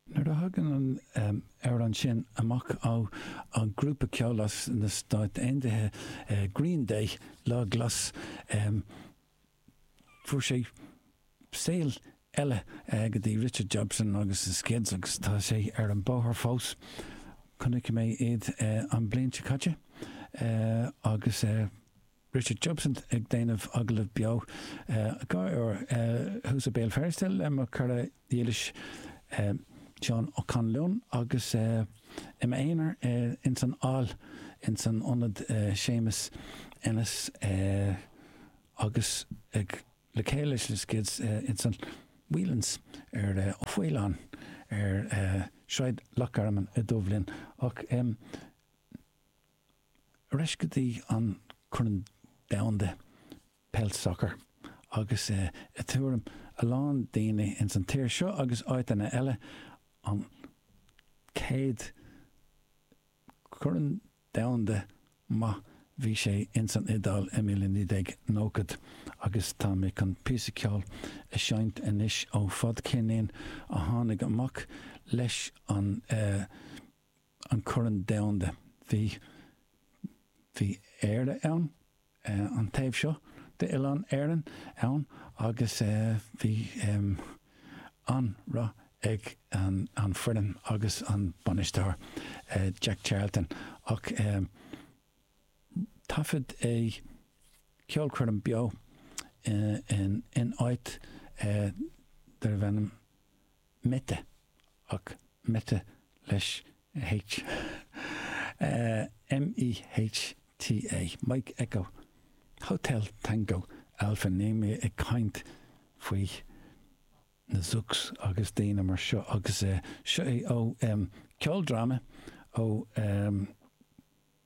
Nuair a thagann an amhrán sin amach ó ghrúpa ceoil as na Stáit Aontaithe, Green Day, Lá Glas, fuair sé saol eile go dtí Richard Jobson agus The Skids agus tá sé ar an bóthar fós. Chonaic mé iad an bhliain seo caite agus Richard Jobson ag déanamh agallamh beo dhá uair thuas i Béal Feirste le mo chara dhílis Seán Ó Conluain agus i m'aonar ins an Aill ins an ionad Séamus Ennis agus ag le chéile leis na Skids ins an Whelan's or Ó Faoláin ar Shráid Loch Garman i Dubhlinn ach Ar ais go dtí an Corn Domhanda Peil Sacar agus i dtuairim a lán daoine ins an tír seo agus áiteanna eile, an chéad Chorn Domhanda maith bhí sé ins an Iodáil i mbliain 1990 agus tá mé chun píosa ceoil a seinnt anois ó fadcheirnín a tháinig amach leis an an Corn Domhanda. Bhí bhí Éire ann, an taobh seo d'oileán Éireann ann agus bhí an-rath ag an an foireann agus an bainisteoir, Jack Charlton, ach thaifead é ceolchoirm beo in in áit darbh ainm, Mehta, ach Mehta leis H. M-e-h-t-a, Mike Echo, Hotel Tango Alpha níl mé ag caint faoi na Zucks agus daoine mar seo agus seo é ó ceoldráma ó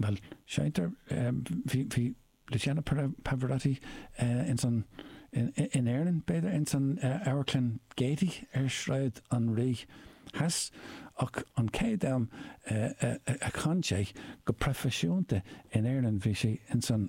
Bhuel, seinntear, bhí, bhí Luciano Pavarotti ins an, in Éirinn, b'fhéidir, ins an amharclann Gaiety ar Shráid an Rí Theas ach an chéad am a chan sé go proifisiúnta in Éirinn bhí sé ins an,